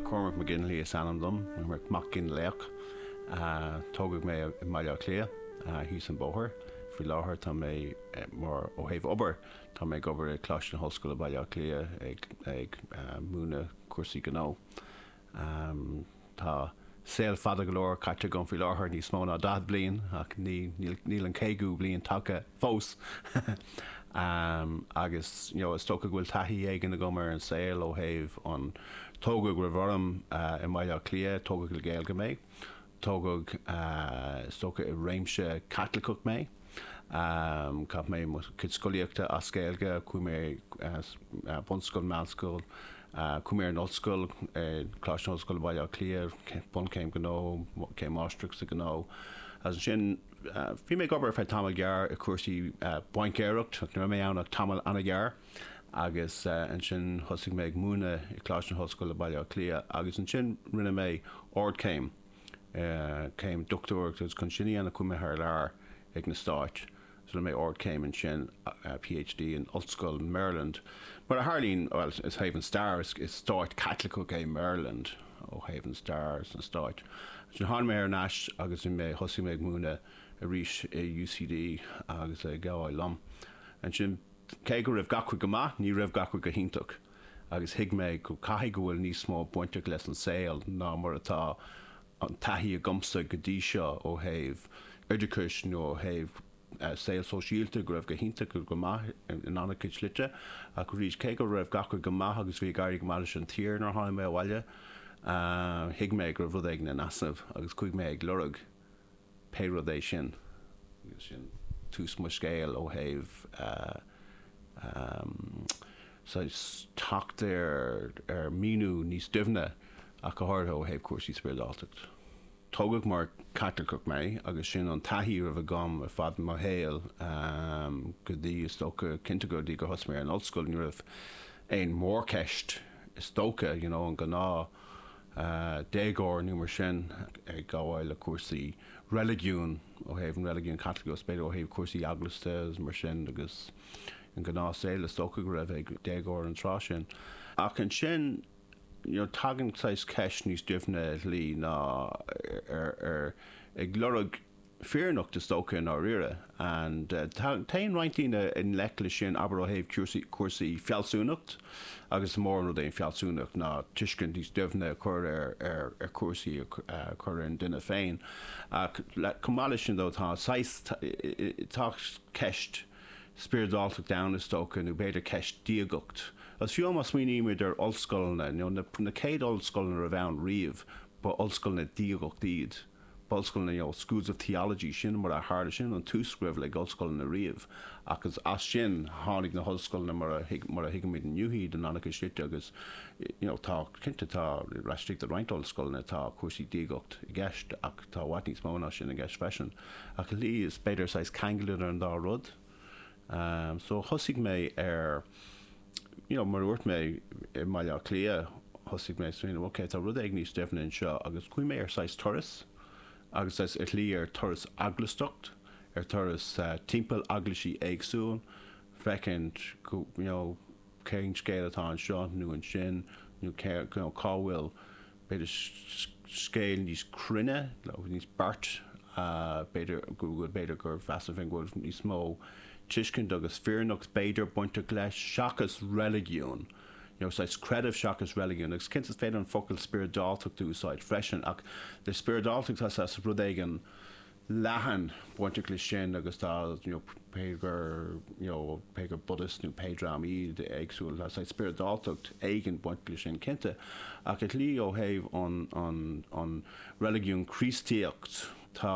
Cormac Mac Fhionnlaoich is ainm dom, Mac Fhionnlaoich. Tógadh mé i mBaile Átha Cliath, thíos an bóthar. Faoi láthair tá mé mar, ó thaobh obair, tá mé ag obair i Coláiste na hOllscoile Baile Átha Cliath ag múineadh cúrsaí gnó. Am, Tá saol fada go leor caite agam faoi láthair, níos mó ná daichead bliain, ach níl an caogadú bliain tagtha fós. Am, Agus you know is dócha go bhfuil taithí éigin agam ar an saol ó thaobh an, tógadh romham i mBaile Átha Cliath, tógadh le Gaeilge mé, Tógadh is dócha i réimse Caitliceach mé. Chaith mé mo chuid scolaíochta as Gaeilge. Chuaigh mé ar bunscoil, meánscoil, chuaigh mé ar an ollscoil, Coláiste na hOllscoile Bhaile Átha Cliath, bunchéim gnó, céim mháistreachta sa ghnó. Agus ansin bhí mé ag obair ar feadh tamall gearr i gcúrsaí baincéireacht, ní raibh mé ann ach tamall an-ghearr. agus ansin thosaigh mé ag múineadh i gColáiste na hOllscoile Baile Átha Cliath agus ansin rinne mé ardchéim, céim dochtúireachta agus chun sin a dhéanamh chuaigh mé thar lear ag na Stáit agus rinne mé ardchéim ansin, PhD, in Ollscoil Maryland. Mar a tharlaíonn, bhuel, ó thaobh an stair, is stát Caitliceach é Maryland ó thaobh an stair sna Stáit. Ansin tháinig mé thar n-ais agus thosaigh mé ag múineadh arís i UCD agus ag gabháil liom ansin. Cé go raibh gach rud go maith, ní raibh gach rud go hiontach agus thuig mé go caithfidh go bhfuil níos mó bainteach leis an saol ná mar atá an taithí agamsa go dtí seo ó thaobh oideachais nó ó thaobh saol sóisialta, go raibh go hiontach go maith in an-chuid slite ach arís, cé go raibh gach rud go maith agus bhí ag éirí go maith leis an tír nuair a tháinig mé abhaile, thuig mé go raibh rud éigin in easnamh agus chuaigh mé ag lorg. Pé rud é sin, agus sin tús mo scéil ó thaobh saghas teacht ar míniú níos doimhne ach go háirithe ó thaobh cúrsaí spioradáltacht. Tógadh mar Chaitliceach mé agus sin an taithí a raibh agam ar fad mo shaol go dtí is dócha, cinnte go dtí gur thosaigh mé ar an ollscoil ní raibh aon mhórcheist is dócha, you know an gnáth a déagóir nó mar sin ag gabháil le cúrsaí reiligiúin ó thaobh an reiligiúin Chaitlicigh agus b'fhéidir ó thaobh cúrsaí eaglasta agus mar sin agus an gnáth saol is dócha go raibh ag déagóir an tráth sin ach ansin you know tagann saghas ceist níos doimhne i slí ná ar ar ag lorg fírinneacht is dócha i ndáiríre and téann roinnt daoine i ngleic leis sin abair ó thaobh cúrsaí fealsúnacht agus is mór an rud é an fealsúnacht ná tuiscint níos doimhne a chur ar chúrsaí a chur ar an duine féin ach chomh maith leis sin ó tá saghas tá ceist spioradáltachta ann is dócha nó b'fhéidir ceist diagacht agus fiú má smaoinímid ar ollscoileanna you know na céad ollscoileanna a raibh ann riamh ba ollscoileanna diagacht iad. Ollscoileanna you know schools of theology sin mar a tharla sin an tús a raibh le hollscoileanna riamh agus as sin tháinig na hollscoileanna mar a thuig mar a thuigimid inniu iad in an-chuid slite agus you know tá cinnte tá fós istigh i roinnt ollscoileanna tá cúrsaí diagacht i gceist ach tá i bhfad níos mó ná sin i gceist freisin ach ar shlí is b'fhéidir saghas ceangal idir an dá rud so thosaigh mé ar you know, mar a dúirt mé, i mBaile Átha Cliath, thosaigh mé ag smaoineamh, ok, tá rud éigin níos doimhne anseo agus chuaigh mé ar saghas turas agus saghas ar shlí ar turas eaglaistacht, ar turas timpeall eaglaisí éagsúil, féachaint, you know, cén scéal atá anseo nó ansin nó cá bhfuil. b'fhéidir scéal níos cruinne nó níos beaichte, b'fhéidir go b'fhéidir gur mheas mé go bhfuil níos mó tuiscint agus fírinneacht b'fhéidir bainteach leis seachas reiligiún, you know saghas creideamh seachas reiligiún agus cinnte is féidir an focal spioradáltacht a úsáid freisin ach le spioradáltacht tá saghas rud éigin leathan bainteach leis sin agus tá you know pé gur you know pé gur Buddhists nó pé dream iad éagsúil tá saghas spioradáltacht éigin bainteach leis sin cinnte ach i slí ó thaobh an an an reiligiún Críostaíocht tá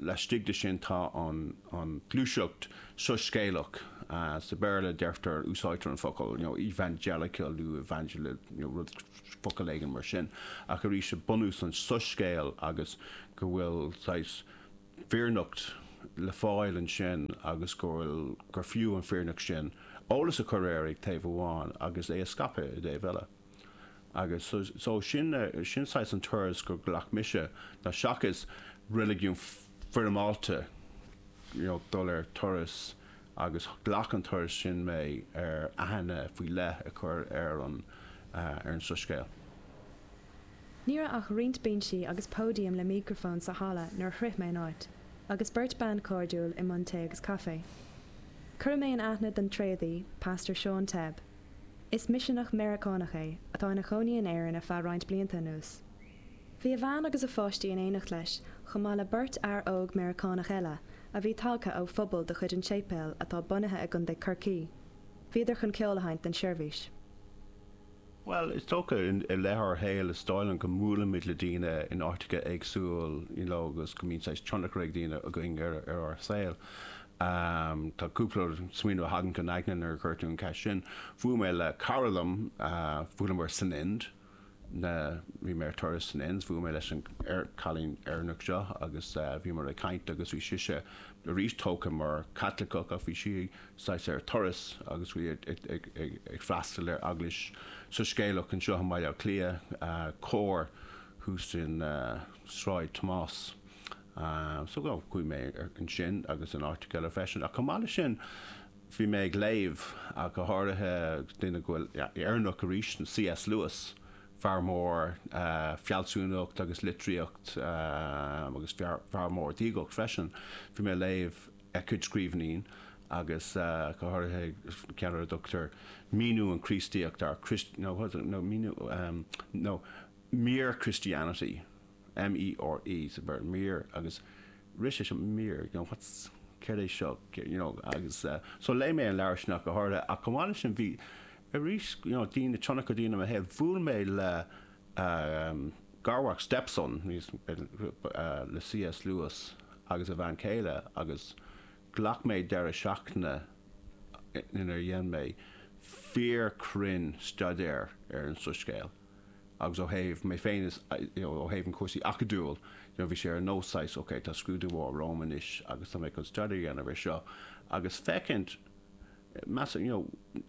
laistigh de sin tá an an gluaiseacht soiscéalach sa Bhéarla deirtear úsáidtear an focal you know evangelical nó evangelist you know rud focal éigin mar sin, ach arís is é bunús an tsoiscéil agus go bhfuil saghas fírinneacht le fáil ansin agus go bhfuil, gur fiú an fírinneacht sin eolas a chur air ag taobh amháin agus é a scaipeadh i dtaobh eile. Agus so sin, sin saghas an turas gur ghlac mise ná seachas reiligiún foirmeálta, you know, dul ar turas, agus ghlac an turas sin mé ar aithne faoi leith a chur ar an soiscéal. Ní raibh ach roinnt binsí agus póidiam le mícrafón sa halla nuair a shroich mé an áit, agus beirt bean chairdiúil i mbun tae agus caife. Cuireadh mé in aithne don tréadaí, Pastor Seán Tebb. Is miseanach Meiriceánach é, atá ina chónaí in Éirinn ar feadh roinnt blianta anuas. Bhí a bhean agus a pháistí in éineacht leis, chomh maith le beirt fhear óg Meiriceánach eile, a bhí tagtha ó phobal de chuid an tséipéil atá bunaithe i gContae Chorcaí. Bhíodar chun ceol a sheinnt don seirbhís. Bhuel, is dócha, i leith ár shaol, is dóigh liom go mbuailimid le daoine in áiteacha éagsúil you know agus go mbíonn saghas tionchar ag daoine againn ar ár saol. Tá cúpla smaoineamh a thagann chun aigne nuair a chuir tú an cheist sin. Bhuail mé le cara liom, bhuaileamar san Ind. na, bhí mé ar turas san Ind, bhuail mé leis an, ar, cailín Éireannach seo agus bhíomar ag caint agus bhí sise arís tógtha mar Chaitliceach ach bhí sí saghas ar turas agus bhí ag, ag, ag, ag, ag freastal ar eaglais soiscéalach anseo i mBaile Átha Cliath, Cór thuas in Sráid Thomáis. So, chuaigh mé ar, ansin agus in áiteacha eile freisin ach chomh maith leis sin, Bhí mé ag léamh, ach go háirithe duine go bhfuil Éireannach arís, C.S. Lewis, fear mór fealsúnacht agus litríocht agus fear mór diagacht freisin. Bhí mé ag léamh a chuid scríbhinní agus go háirithe ceann ar a dtugtar Míniú an Chríostaíocht, nó Mere Christianity. MERE so mere agus rith sé seo mere you know what's céard é seo you know agus so léigh mé an leabhar sin go háirithe ach chomh maith leis sin bhí arís you know daoine tionchar daoine i mo shaol bhuail mé le garmhac stepson le CS Lewis agus a bhean chéile agus ghlac mé deireadh seachtaine inar dhein mé fíor chruinn staidéar ar an soiscéal. agus ó thaobh mé féin is you know ó thaobh an cúrsaí acadúil you know bhí sé ar nós saghas ok tá scrúdú mór romham anois agus tá mé chun study a dhéanamh ar seo agus féachaint measaim you know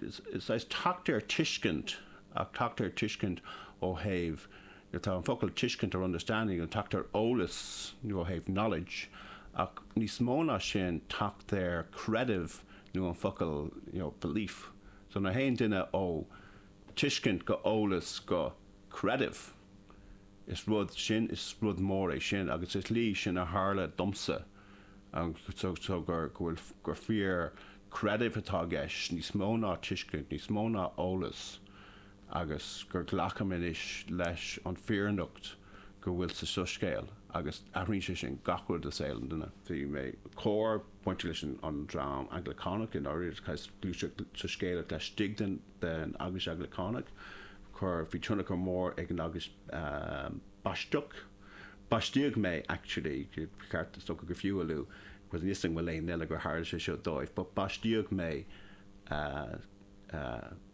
is saghas teacht ar tuiscint ach teacht ar tuiscint ó thaobh you know tá an focal tuiscint or understanding teacht ar eolas you know ó thaobh knowledge ach níos mó ná sin teacht ar creideamh nó an focal you know belief so nuair a théann duine ó tuiscint go eolas go creideamh. Is rud sin, is rud mór é sin agus is slí sin a tharla domsa agus so gur, go bhfuil, gur fíorchreideamh atá i gceist níos mó ná tuiscint, níos mó ná eolas agus gur glacaim anois leis an fírinneacht go bhfuil sa soiscéal agus athraíonn sé sin gach rud i saol an duine. Bhí Cór bainte leis an dream Anglacánach i ndáiríre, gluaiseacht soiscéalach laistigh den. den Eaglais Anglacánach. Chuir, bhí tionchar mór ag an Eaglais Baisteach, baistíodh mé actually, ceart, is dócha gur fiú a lua because níl 's agam aon duine eile gur tharla sé seo dóibh but baistíodh mé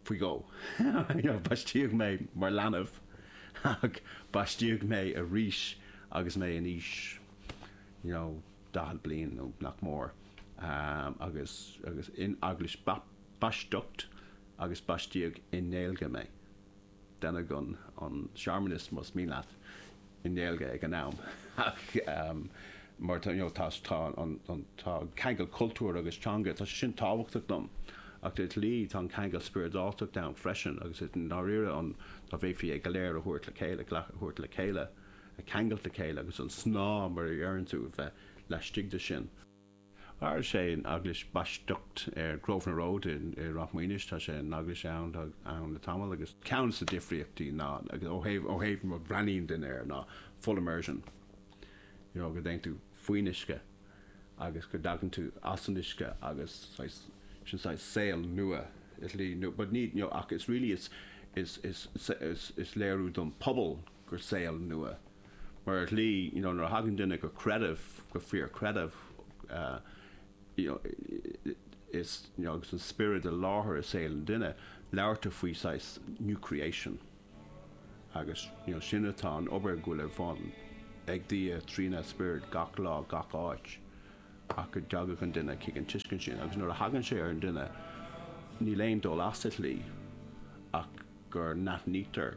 faoi dhó yeah baistíodh mé mar leanbh ach baistíodh mé arís agus mé in aois you know daichead bliain nó nach mór agus, agus in Eaglais Bap, Baisteach agus baistíodh i nGaeilge mé. Deineadh an searmanas, más mian leat, i nGaeilge ag an am ach mar tá tá an ceangal cultúir agus teanga, tá sé sin tábhachtach dom ach ar shlí tá an ceangal spioradáltachta ann freisin agus i ndáiríre an dá bhféadfaí é go léir a thabhairt le chéile, a thabhairt le chéile, a cheangal le chéile agus an snáth mar a dheireann tú a bheith laistigh de sin. Is é an Eaglais Baisteach ar Grosvenor Road i Ráth Maonais. Tá sé an eaglais ann tá ann le tamall agus ceann dos na difríochtaí ná agus ó thaobh ó thaobh a bhreathnaíonn duine air ná full immersion you know go dtéann tú faoin uisce agus go dtagann tú as an uisce agus saghas sin saghas saol nua ar shlí nó but ní you know ach is really is is is is is léiriú don phobal gur saol nua. Mar ar shlí you know nuair a thagann duine go creideamh, go fíor creideamh you know is you know agus an Spiorad i láthair i saol an duine, labhartar faoi saghas new creation agus you know sin atá an obair go bhfuil ar bhun ag Dia trína Spiorad gach lá gach áit ach go dtagfadh an duine chuig an tuiscint sin agus nuair a thagann sé ar an duine níl aon dul as ar shlí ach gur n-aithnítear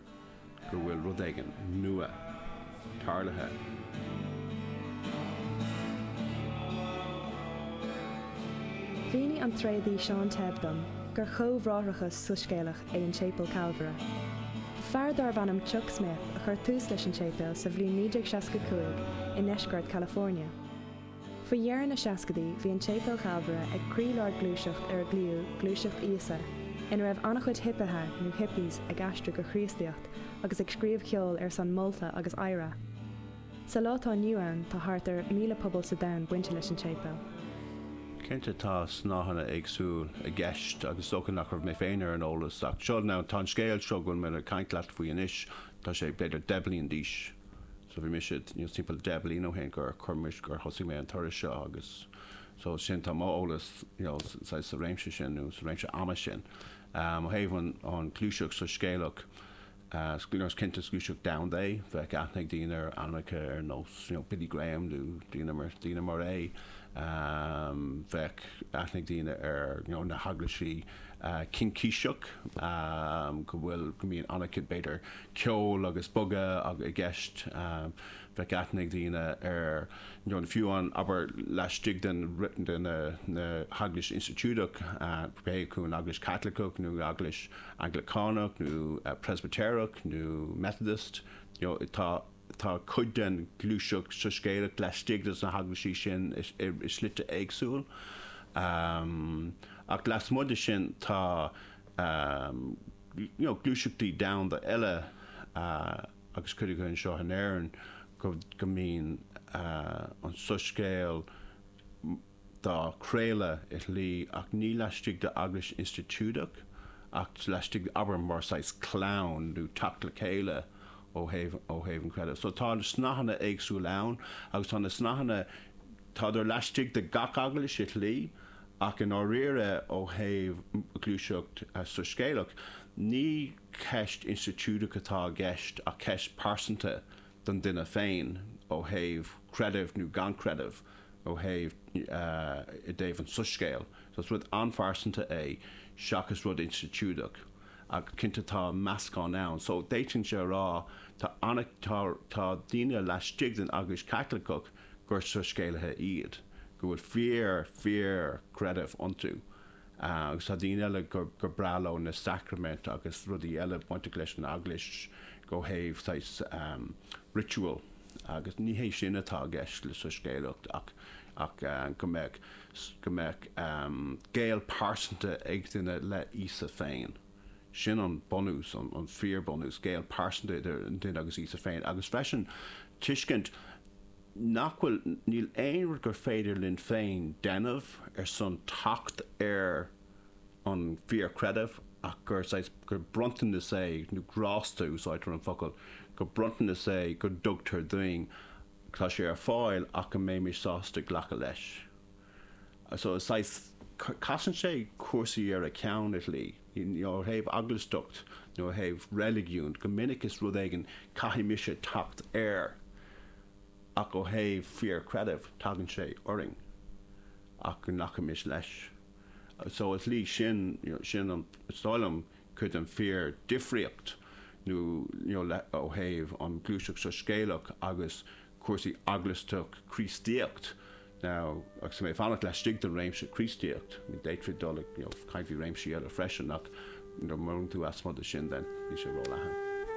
go bhfuil rud éigin nua tarlaithe. Mhínigh an Tréadaí Seán Tebb dom gur chomhbhráithreachas soiscéalach é an tSéipéal Chalvaire. Fear darbh ainm Chuck Smith a chuir tús leis an tséipéal sa bhliain 1965 i ndeisceart California. Faoi dheireadh na seascaidí bhí an tSéipéal Chalvaire ag croílár gluaiseacht ar ar glaodh Gluaiseacht Íosa ina raibh an-chuid hipithe nó hippies ag aistriú go Chríostaíocht agus ag scríobh cheoil ar son molta agus adhradh. Sa lá atá inniu ann tá thart ar 1,000 pobal sa domhan bainte leis an tSéipéal. Cinnte tá snáitheanna éagsúil i gceist agus is dócha nach raibh mé féin ar an eolas ach seo, now, tá an scéal seo go bhfuil mé le caint leat faoi anois, tá sé b'fhéidir deich bliain d'aois. So bhí mise, you know, timpeall deich bliana ó shin gur chuir mise, gur thosaigh mé an turas seo agus so sin, tá mo eolas, you know, saghas sa réimse sin nó sa réimse ama sin. Um, ó thaobh an, an gluaiseacht soiscéalach, uh, you know, is cinnte is gluaiseacht domhanda é, bheadh aithne ag daoine ar ainmneacha ar nós, you know, Billy Graham nó daoine mar, daoine mar é. Um, bheadh aithne ag daoine ar, you know, na heaglaisí, uh, Cincíseach, um, go bhfuil, go mbíonn an-chuid b'fhéidir, ceol agus bogadh i gceist. Bheadh aithne ag daoine ar nó fiú an obair laistigh de na hEaglaisí institiúideach, pé acu an Eaglais Chaitliceach nó Eaglais Anglacánach nó Presbitéireach nó Methodist. Tá cuid den ghluaiseacht soiscéalach laistigh desna hEaglaisí sin i slite éagsúil. Ach lasmuigh de sin tá. gluaiseachtaí domhanda eile agus cuid acu anseo in Éirinn, go mbíonn an soiscéal dá chraoladh i shlí ach ní laistigh d'eaglais institiúideach ach laistigh, abair, mar saghas clann nó teacht le chéile ó thaobh an chreidimh. So tá na snáitheanna éagsúil ann agus tá na snáitheanna. Táid laistigh de gach eaglais i shlí, ach i ndáiríre ó thaobh ghluaiseacht soiscéalach, ní ceist institiúideach atá i gceist ach ceist pearsanta don duine féin ó thaobh creideamh nó gan creideamh ó thaobh, i dtaobh an tsoiscéil. Is rud an-phearsanta é seachas rud institiúideach ach cinnte tá meascán ann. So d'fhéadfainnse a rá tá daoine laistigh den Eaglais Chaitliceach, gur soiscéalaithe iad, go bhfuil fíor, fíor chreideamh iontu. Agus tá daoine eile gur breá leo na sacraimint agus rudaí eile bainteach leis an Eaglais ó thaobh saghas ritual agus ní hé sin atá i gceist le soiscéalaíocht ach go mbeadh, go mbeadh gaol pearsanta ag duine le Íosa féin. Sin an bunús, an fíor bhunús, gaol pearsanta idir an duine agus Íosa féin agus freisin tuiscint nach bhfuil, níl aon rud gur féidir linn féin déanamh ar son teacht ar an fíor chreideamh ach gur saghas, gur bronntanas é nó grásta, úsáidtear an focal, gur bronntanas é go dtugtar duinn. Tá sé ar fáil ach go mbeimid sásta glacadh leis. so saghas casann sé cúrsaí ar a cheann i shlí, you know ó thaobh eaglaisteacht nó ó thaobh reiligiúin go minic is rud éigin caithfidh mise teacht air ach ó thaobh fíor creidimh tagann sé orainn ach go nglacfaimis leis so i shlí sin you know sin an is dóigh liom cad é an fíordhifríocht nó nó le ó thaobh an ghluaiseacht soiscéalach agus cúrsaí eaglasta Críostaíocht now agus mé ag fanacht laistigh den réimse Críostaíocht I mean d'fhéadfaí dul ag you know caint faoi réimsí eile freisin ach you know má imíonn tú amú ansin then bíonn sé róleathan.